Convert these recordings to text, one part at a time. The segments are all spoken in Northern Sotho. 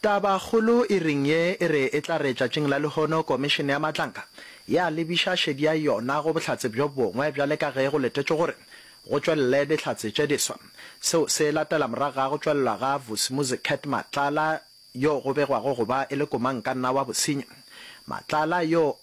Tabakgolo e reng ye e re e tla re tšatšing la lehono Komišene ya Matlanka ya lebiša šedi ya yona go bohlatse bjo bongwe bjale ka ge go letetšwe gore go tšwelele dihlatse tše diswa. Seo se latela morago ga go tšwelelwa ga Vusimuzi Cat Matlala yo go begwago go ba e le komankanna wa bosenyi. Matlala yo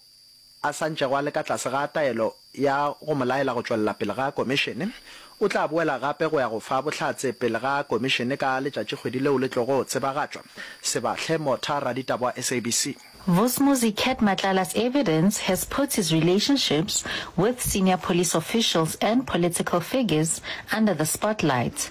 a sa ntšego a le ka tlase ga taelo ya go mo laela go tšwelela pele ga Komišene, o tla boela gape go ya go fa bohlatse pele ga Komišene ka letšatši kgwedi leo le tlogo tsebagatšwa. Sebahle Motha, raditaba wa SABC. Vusmuzi Cat Matlala's evidence has put his relationships with senior police officials and political figures under the spotlight.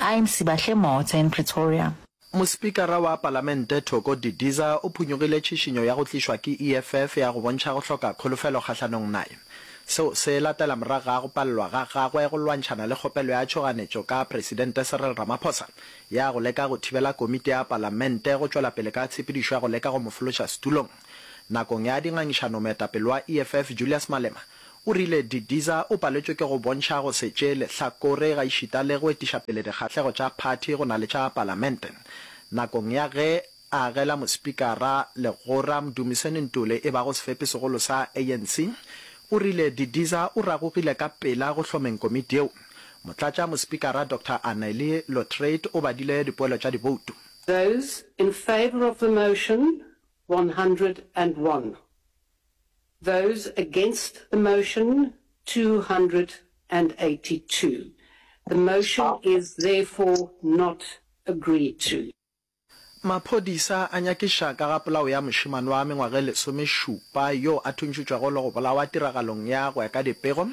I'm Sibahle Motse in Pretoria. Mospikara wa Palamente Thoko Didiza o phunyogile tšhišinyo ya go tlišwa ke EFF ya go bontšha go hloka kholofelo kgahlanong naye. Seo se latela morago ga go palelwa ga gagwe go lwantšhana le kgopelo ya tšhoganetšo ka Presidente Cyril Ramaphosa ya go leka go thibela Komiti ya Palamente go tšwela pele ka tshepedišo ya go leka go mo fološa setulong. Nakong ya dingangišano moetapele wa EFF Julius Malema o rile Didiza o paletšwe ke go bontšha go se tšee lehlakore gaešita le go etiša pele dikgahlego tša phathi go na le tša Palamente nakong ya ge a agela mospikara legora Mdumiseni Ntuli e bago sefepi segolo sa ANC o rile Didiza o ragogile ka pela go hlomeng komiti yeo. Motlatša mospikara Doctor Anneli Lotriet o badile dipoelo tša diboutu. Those in favour of the motion, 101. Those against the motion, 282. The motion is therefore not agreed to. Maphodisa a nyakiša ka ga polao ya mošemane wa mengwaga e lesomešupa yo a thuntšhitšwego le go bolawa tiragalong ya go ya ka dipego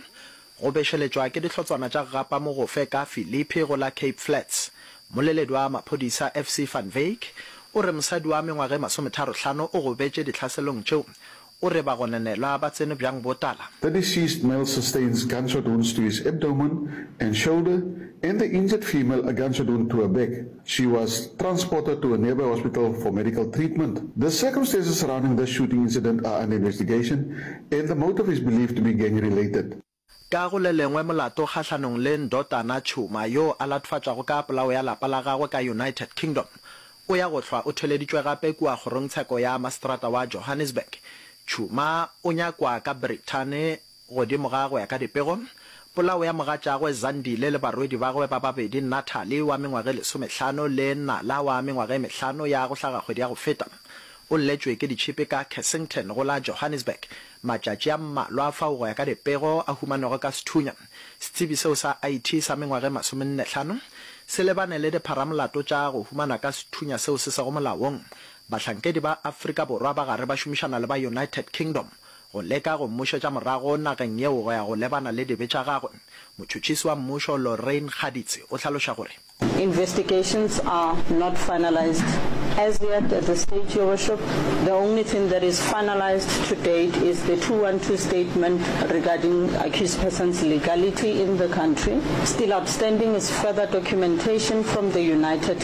Go bešeletšwa ke dihlotswana tša Gapa Mogofe ka Philippi go la Cape Flats. Moleledi wa maphodisa FC Van Wyk o re mosadi wa mengwaga e masometharo-hlano o gobetše dihlaselong tšeo. O re bagononelwa ba tsene bjang botala. The deceased male sustains gunshot wounds to his abdomen and shoulder and the injured female a gunshot wound to her back. She was transported to a nearby hospital for medical treatment. The circumstances surrounding this shooting incident are under investigation and the motive is believed to be gang related. Ka go le lengwe molato kgahlanong le Ndotana Tshuma yoo a latfatšwago ka polao ya lapa la gagwe ka United Kingdom o ya go hlwa o theleditšwe gape kua kgorongtsheko ya maseterata wa Johannesburg. Tshuma o nyakwa ka Brithane Godimo ga go ya ka dipego, polao ya mogatšagwe Zandile le barwedi ba gagwe ba babedi Natalie wa mengwaga e lesomehlano le Nala wa mengwaga e mehlano ya go hlaga kgwedi ya go feta, o lletšwe ke ditšhipi ka Kessington go la Johannesburg matšatši a mmalwa fao go ya ka dipego a humanego ka sethunya. Setsebi seo sa IT sa mengwaga e masomennehlano se lebane le dipharamolato tša go humanwa ka sethunya seo se sego molaong. Bahlankedi ba Afrika Borwa ba gare ba šomišana le ba United Kingdom Go leka go mmušetša morago nageng yeo go ya go lebana le dibe tša gagwe, motšhotšhisi wa mmušo Lorraine Kgaditse o hlaloša gore. Investigations are not finalised as yet at this stage, Your Worship. The only thing that is finalised to date is the two one two statement regarding accused person's legality in the country. Still outstanding is further documentation from the United.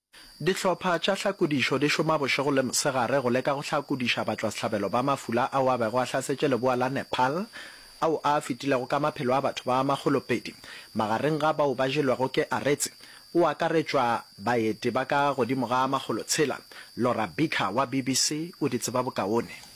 Dihlopha tša hlakodišo di šoma bošego le mosegare go leka go hlakodiša batšwasehlabelo ba mafula ao a bego a hlasetše leboa la Nepal, ao a fetilego ka maphelo a batho ba makgolo pedi. Magareng ga bao ba jelwego ke Aretse, go akaretšwa baeti ba ka godimo ga makgolo tshela. Laura Beaker wa BBC o di tseba bokaone.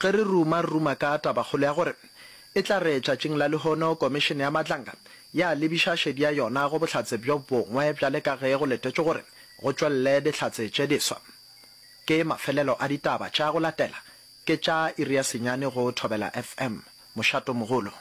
Ge re ruma, re ruma ka tabakgolo ya gore e tla re tšatšing la lehono Komišene ya Matlanga ya lebiša šedi ya yona go bohlatse bjo bongwe bjale ka ge go letetšwe gore go tšwelele dihlatse tše diswa. Ke mafelelo a ditaba tša go latela ke tša iri ya senyane go Thobela FM. Mošato mogolo.